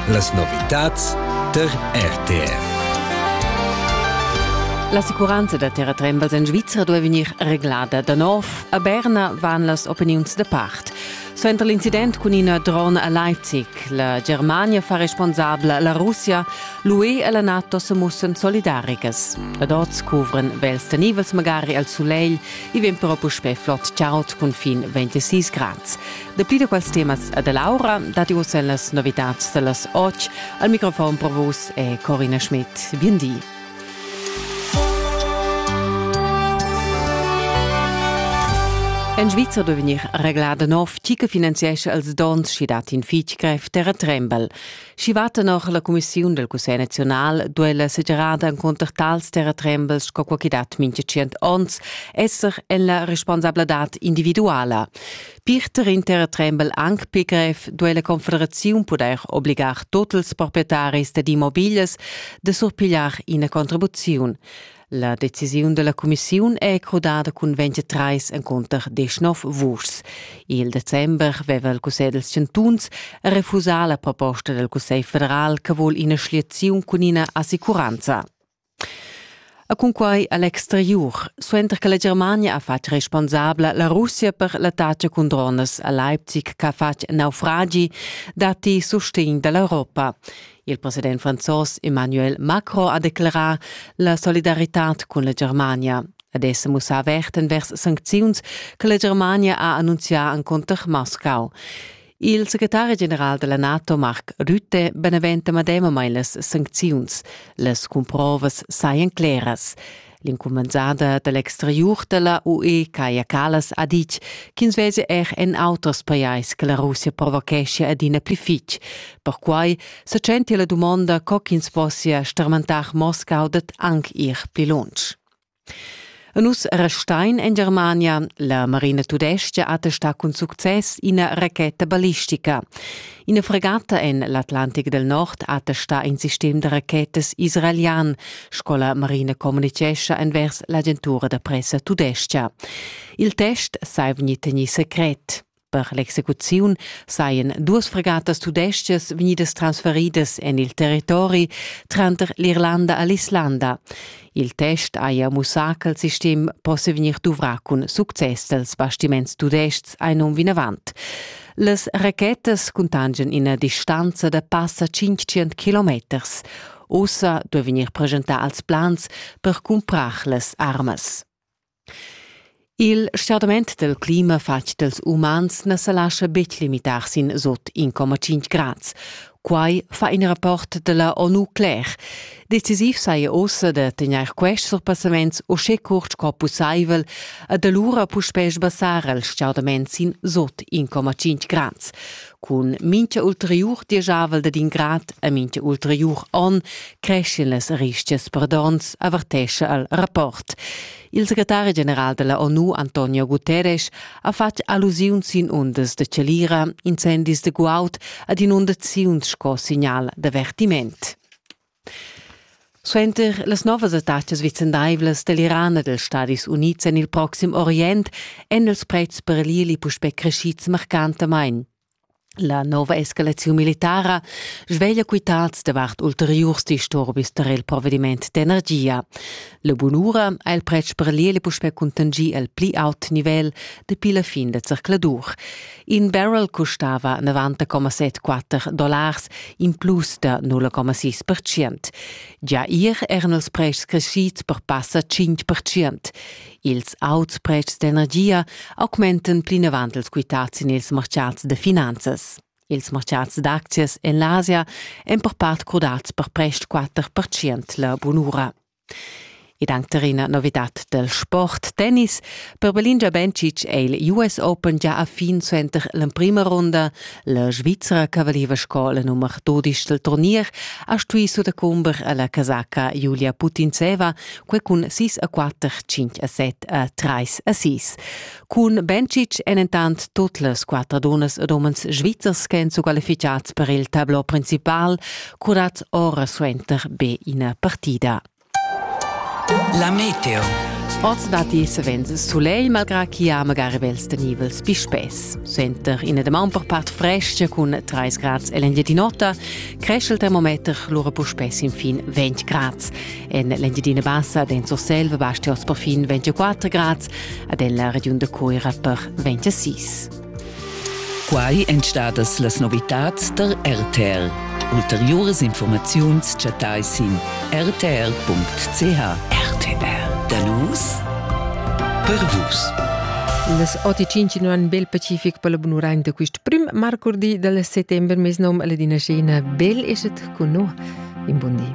Las novitads tar RTV. L'assicuranza da terratrembels en Svizra duai vegnir reglada da nov. A Berna van las opiniuns da part. Suenter l'incident cun ina drona a Leipzig, la Germania fa responsabla la Russia, l'UE e la NATO se mussan solidaricas. Ad oz cuvran vels da nivels magari al sulegl, i vegn però puspè flot chaud cun fin 26 grads. Dapli da quels temas e da Laura datti uss en las novitads da las 8. Al microfon per vus è Corina Schmidt. Bien di. En Svizra duai vegnir reglà da nov tgi che finanziescha els dons sch'i dat in fitg grev terratrembel. Sch'i va tenor la cumissiun dal Cussegl naziunal duai la segerada encunter tals terratrembels sco quai che dat mintga tschient onns esser en la responsabladad individuala. Pirter in terratrembel anc pli grev duai la Confederaziun pudair obligar tut ils proprietaris dad immobiglias da surpigliar ina contribuziun. La decisiun da la cumissiun è crudada cun 23 encunter 19 vuschs. Il december aveva il Cussegl dels Chantuns refusà la proposta del Cussegl federal che vul ina schliaziun cun ina assicuranza. E cunquei egl exteriur, suenter che la Germania ha fatg responsabla la Russia per l'attacca cun dronas a Leipzig che ha fatg naufragi, datti sustegn dall'Europa. Il president franzos Emmanuel Macron ha declarà la solidaritad cun la Germania. Ed essa mussa averten vers sancziuns che la Germania ha annunzià enconter Moscau. Il secretari general della NATO Marc Rutte beneventa medemamain las sancziuns. Las cumprovas sajan cleras. L'incumenzada da l'exteriur da la UE Kaja Kallas ha ditg ch'ins vesi er en auters pajais che la Russia provocheschia adina pli fitg. Perquai sa tschentia la dumonda co ch'ins possia starmentar Moscau dad anc ir pli lunsch. E nus restein en Germania. La Marina Tudestga attesta cun success ina racheta ballistica. Ina fregata en l'Atlantic del Nord attesta in sistem da rachetas israelian, sco la Marina communicescha envers l'agentura da pressa tudestga. Il test sai vegnir tegnì secret. Per l'execuziun sajan duas fregatas tudestgas vegnidas transferidas en il territori tranter l'Irlanda e l'Islanda. Il test haja mussà ch'il sistem possia vegnir duvrà cun success dals bastiments tudestgs ein um vinavant. Las rachetas cuntangian ina distanza da passa 500 kilometers. Ussa duai vegnir presentà als plans per cumprar las armas. Il stordament dal clima fatg dals umans na sa lascha betg limitar sin sut 1,5 grads. Quai fa in rapport da la ONU cler. Decisiv saja ussa da tegnair quests surpassaments uschè curt sco pussaivel ed alura puspè sbassar il stordament sin sut 1,5 grads. Cun mincha ulteriur dieschavel dad in grad e mincha ulteriur on creschin las rischias per dons, avertescha al rapport. Il secretari general della ONU Antonio Guterres ha fatg allusiuns sin undas de celira, incendis de guaud ad in undaziuns sco signal d'avvertiment. Suenter las novas attacas vicendaivlas dall'Iran e dals Stadis Unids en il proxim Orient èn ils pretschs per l'ieli puspè creschids marcantamain. La nova escalaziun militara sveglia quitads davart ulteriurs disturbis tar il provediment d'energia. La bunura ha il pretsch per l'ieli puspè cuntanschì al pli aut nivel dapi la fin da zercladur. In barrel custava 90,74 dollars, in plus da 0,6%. Gia ir eran els prests crescids per passa 5%. Ils auts pretschs d'energia augmentan plinavant els quitads en ils marchats da finanzas. Ils marchats d'aczias en l'Asia èn per part crudats per prest 4% la bunura. Ed anc tar ina novidad dal sport tennis. Per Belingia Bencic è il US Open gia a fin suenter l'emprima runda. La Svizra che valiva sco la nummer 12 dal turnier ha stuì sudacumber a la casaca Julia Putintseva, quai cun 6 a 4, 5 a 7 a 3 a 6. Cun Bencic èn entant tut las quatter dunnas ed umens svizzers ch'èn squalificads per il tableau principal, curads ora suenter be ina partida. La meteo. Oz datti savens sulegl, malgrà ch'i ha magari bels tenivels pispes. Suenter ina damaun per part frescha cun 3 grads en l'Engiadin'Ota cresce il termometer lura puspè sin fin 20 grads. En l'Engiadina Bassa d'en Surselva basti oz perfin 24 grads, ad en la regiun de Coira per 26. Quai èn stadas las novitads der RTL. Ulteriores Informaziuns chattai sin rtr.ch. RTR. Danus per vus. Las 8.5 un bel pacific per la bunurain da quist prim marcurdi del settembre mes nom alla dinascena Bel eset con no. In buon di.